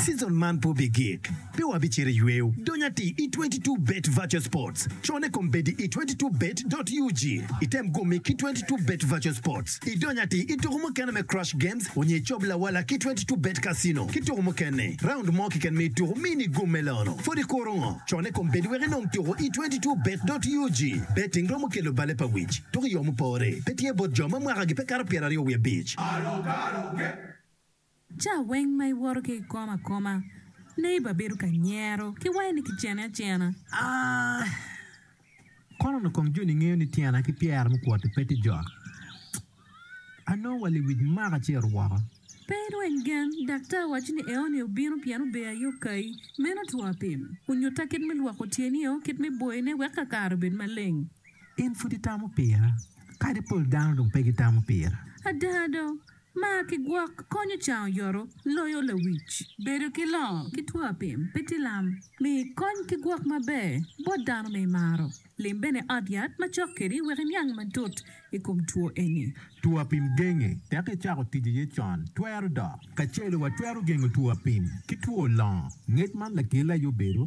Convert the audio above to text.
Season man pe obigik, pe wabicito i yweyo. Dony atir i 22 Bet Virtual Sports. Cone kom bedi i 22 Bet dot ug. Item gomme ki 22 Bet Virtual Sports. Idony atir i tuko mukene me Crush Games onyo icob lawala ki 22 Bet Casino ki tuko mukene. Round mo keken ma ituko mi ni gomme lono. Pwod ikuro ngo? Cone kom bedi wek inong tuko i 22 Bet dot ug. Betting romo kelo bale pa wic, dok i yo mupore, pe tye bot jo ma mwakagi pe kato pyeraryo wiye abic. Ca weng ma iwoto ki ikom akoma, neighbor bedo ka nyero ki wange ni kicene acena. Kono onongo kong joni ngeyo ni tyena ki pyera me kwot-ti pe tye jok. Anongo wa liwic maka ci eru woko. Pe irweny gen, daktar waco ni eoni obino pien obeyo aye okayi. Meno two apim. Onyutta kit me lwoko tyenio, kit me boyone wek kakare obed maleng. In pud itamo pira, kadi pol dano dong pe gitamo pira. Ada do, mar ki gwok konyo can oyoto loyo lawic. Bedo ki longo ki two apim pe tye lam. Mi kony ki gwok maber bot dano ma imaro. Lim bene i ot yat ma cok kedi wek iniang matut i kom two eni. Two apim genge teke icako tic iye con twero dok. Kacelo watwero gengo two apim ki two longo. Ngec man lakele aye obedo.